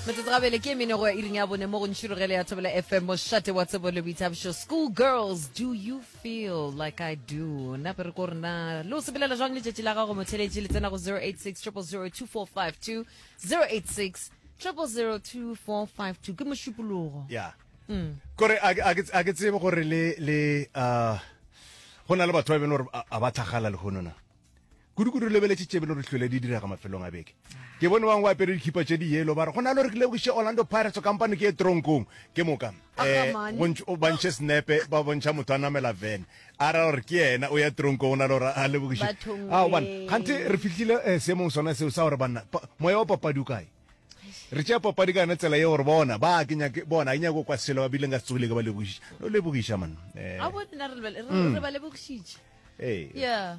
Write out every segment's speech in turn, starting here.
metsotso gabele ke emene go ya iring ya bone mo go ntšhirogele ya thobela fm mošate wa tsebo le boithabišo school girls do you feel like i do nna re ko rena le o sebelela jwang letšatši la gago motheletši le tsena go 086 0002452 086 0002452 ke mošupologo ya mm. kore a ke tsebe gore le le uh, go na le batho ba e bene gore a ba thagala le gonona Kudu-kudu re lebeletše tše belo re hlwele di direga mafelong a beke. Ke bone bangwe ba apere dikhipa tše di yelo ba re go na le gore ke lebogiše Orlando Pirates kampane ke e tronkong ke moka. Um ba ntšhe senepe ba bontšha motho a namela vene a ra gore ke yena o ya tronkong o na le gore a lebogiše. A o bana gante re fihlile um seemong sona seo sa gore banna moya wa papadi o kae re tšea papadi ka yone tsela ye gore bona ba ke nyake bona e nyako kwa selo ba bileng ka se tsogile ke ba lebogiša no lebogiša man eh. a bo nna re ba lebogišitše ee yeah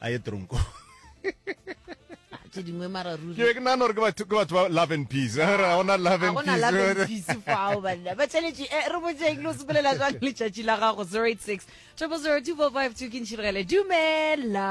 a ye tronko tse dingwe mara ruri ke ke nana gore ke batho ke batho ba love and peace eh, ra ona love and peace love and peace fao banna ba tšheletše eh, re botseng lo sepelela jang letšatši la gago 086 triple 02452 ke ntšhiregele dumela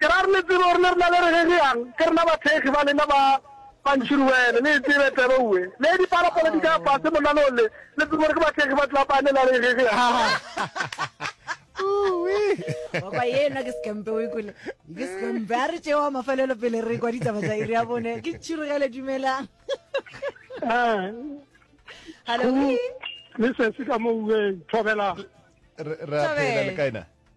Ke ra re le tsebe gore le rena le re gegeang ke rena bathekgi ba lena ba bantšhiruwele, le e tsebe taba uwe. Le dipalopalo di ka fase monanong le, le tsebe gore ke bathekgi ba tlapane la re gegeang. oka ye nna ke sekempe o ikole ke sekempe a re tšewa mafelelo pele re kwa ditaba tsa iri ya bone ke tšhirogele dumelang ah. hallo le sesi ka mo ueng thobela re a phela le kaena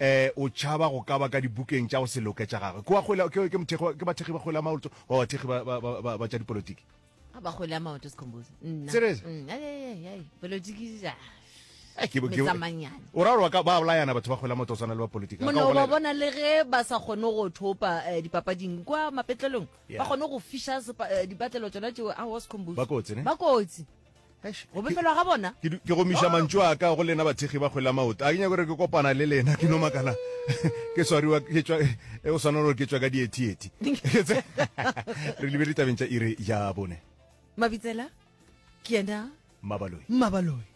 E, o tšhaba go ka ba ka dibukeng tša go se loke tša gagwe. Kwa kgwela, ke, ke, mothekgi, ke bathekgi ba kgwela maoto wa bathekgi ba, ba, ba, ba, ba tša dipolotiki. A ba kgwela maoto sekhombozi. Nna. Serious? Mm, ai, ai, ai, ai. Polotiki, ja. Eh, ke- ke- Metsamanyana. O ra gore wa ka- ba bolayana batho ba kgwela maoto go swana le ba politiki. Ba ka go mono ba bolaya- bona le ge ba sa kgone go thopa eh, dipapading kwa mapetlelong Yeah. ba kgone go fiša sepa- eh, dipatlelo tsona tšeo a wa sekhombozi Ba kotsi, ne? ba kotsi go befelwa ga bona ke gomiša mantšu a ka go lena bathekgi ba kgwela maoto a ke nyako gore ke kopana le lena ke no makala ke swariwa ke tswa e go swana gore ke tswa ka diethieti re lebele tabeng tša ire ya bone mabitsela ke yena mabaloi mabaloi